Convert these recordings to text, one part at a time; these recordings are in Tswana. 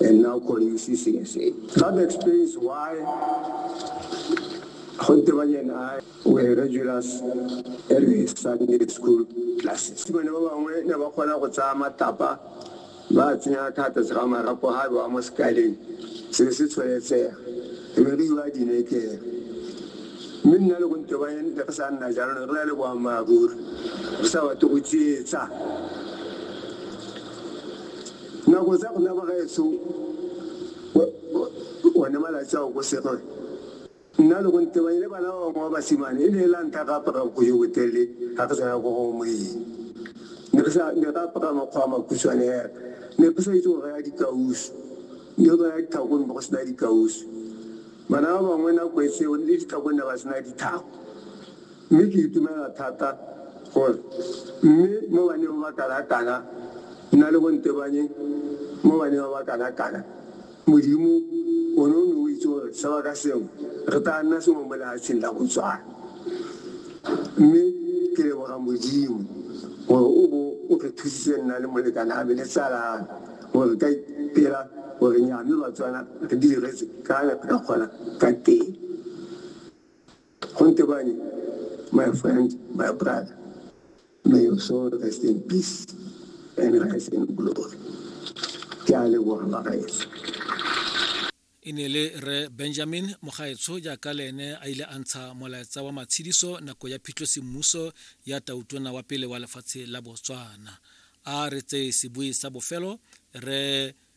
and now call you CCSA. That explains why Hontebanye and I were regulars every Sunday school classes. Bone ba bangwe ne ba kgona go tsaya matapa ba tsenya thata se ga marapo ga ba mo sekaleng se se tshwanetsega e be re iwa dinekere mme nna le Hontebanye ne re sa nna jalo ne re na le boammaaruri re sa batle go tsietsa Nako tsa rona bagaetsho, one malatsi ao ko Sirle, nna le go ntebanye le bana ba bangwe ba basimane, e ne e la ntlha re apara bogodu jo botelele ga re tsena ko go moeng. Ne re apara makgwa a makhutshwane hela, ne re sa itse go raya dikausu, ne re raya ditlhako ne go sena dikausu. Bana ba bangwe nako e tseo le ditlhako ne ba sena ditlhako. Mme ke itumelela thata gore mme mo baneng ba ba kanakana nna le go ntebanye mo baneng ba ba kanakana, Modimo, o ne o ne o itse gore sebaka sengwe re tlaa nna sengwe mo lehatsheng la Botswana. Mme ke leboga Modimo gore o bo o re thusitse nna le molekane a me le tsala ya me gore re ka ipela gore nnyaa mme Batswana re di diretse ka ne re ka kgona ka teng. Go ntebanye my friend, my brother. May your soul rest in peace and rise in glory. Ke a leboga bagaetsho. e ne le re benjamin mogaetsho jaaka le ene a ile a ntsha molaetsa wa matshediso nako ya phitlho semmuso ya tautona wa pele wa lefatshe la botswana a re tseye sebui sa bofelo re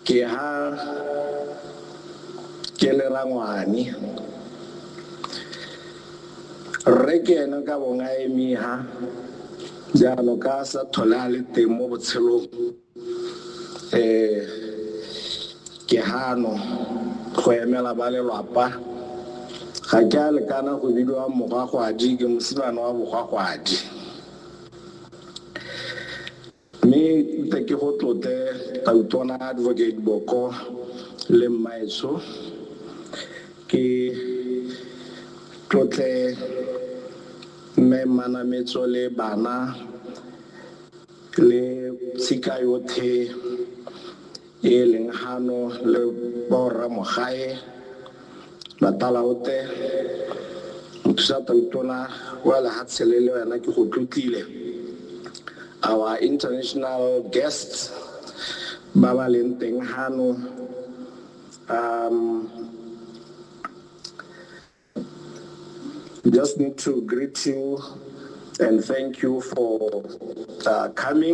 Ke ha ke le rangwane. Rre ke ene ka bong a emiha jalo ka a sa tlhole a le teng mo botshelong. Ke hano go emela ba lelwapa. Ga ke a lekana go bidiwa mogwagwadi, ke mosimane wa bogwagwadi. Mme tle ke go tlotle Tautona Advocate Boko le mmaetsho, ke tlotle Mme Mmanametso le bana le tshika yothe e leng hano le Borra Mogae, Matalaote, Mothusa Toutona wa Lehatsele le wena ke go tlotlile. Our international guests ba ba leng teng hano, um, just need to greet you and thank you for uh, coming.